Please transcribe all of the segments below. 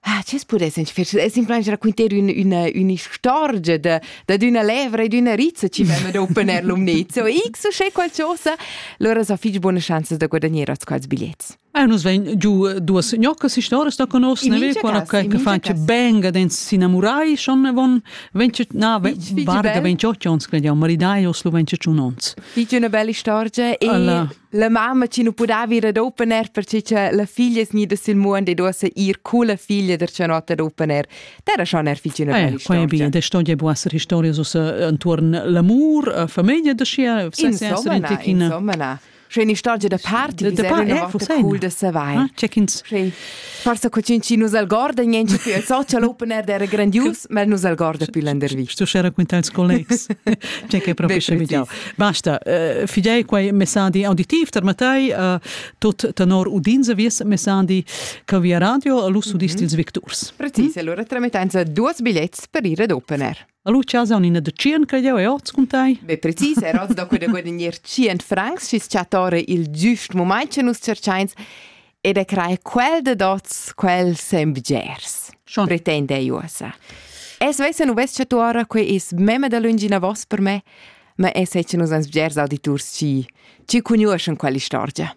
Ah, chi's pudess in fece es simpelmaing raquinter ün üna ün'istorgia da dad üna levra e d'üna rizza chi vemma dopo nel lumnezza. X uschè qualchosa, lura so fich buna chanza da guadagner oz quals bigliets. Ah, nus vegn giù duas gnoccas historias da conosco, ne ve quella che che fa che benga den s'inamurai schon von venche na varga 28 ons che jau maridai os lu venche un ons. Fich üna bella istorgia e La mamma ci nu pudava ir ad open air perche cha la figlia sgnida sil muond e duossa ir culla figlia der cianot ad open air. D'era schon er figina bella Eh, qua è bine, da storia può essere storia intorno all'amor, alla famiglia da scia, se se essere in tecchina. Insomma, na. Schöne Storia da Party, Da- da wie sehr Party, wir eh, noch was cool, denn? das Ah, Check-ins. Schön. Forsa co cin chi nus algorda niente più il social open air era grandius, ma nus algorda più landervi. Sto share con ils collegs. C'è che proprio scegliamo. Basta, uh, fidei quei messandi auditiv tarmatai uh, tot tenor udinza vies messandi che via radio all'usso mm -hmm. dils victurs. Precis, mm -hmm. allora tramettenza duas biglietti per ir ad open air. Allora chasa un ina da 100 che jau è oz con tai? Be precis, er oz da quella guadagnare 100 francs, schis chattare il giust moment che nus cerchains, ed è crai quel de dots, quel sem bgers. Schon. Pretende uosa. Es vesa nu ves che tu ora que is meme da lungina vos per me, ma es è che nus ans bgers auditurs ci, ci cugnuoschen quella storia.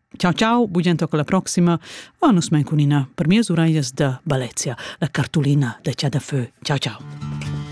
Ciao ciao, bugiento alla prossima. Va nus men cun ina per mie uraglias da Balezia, la cartolina de Cià da Fö. Ciao ciao.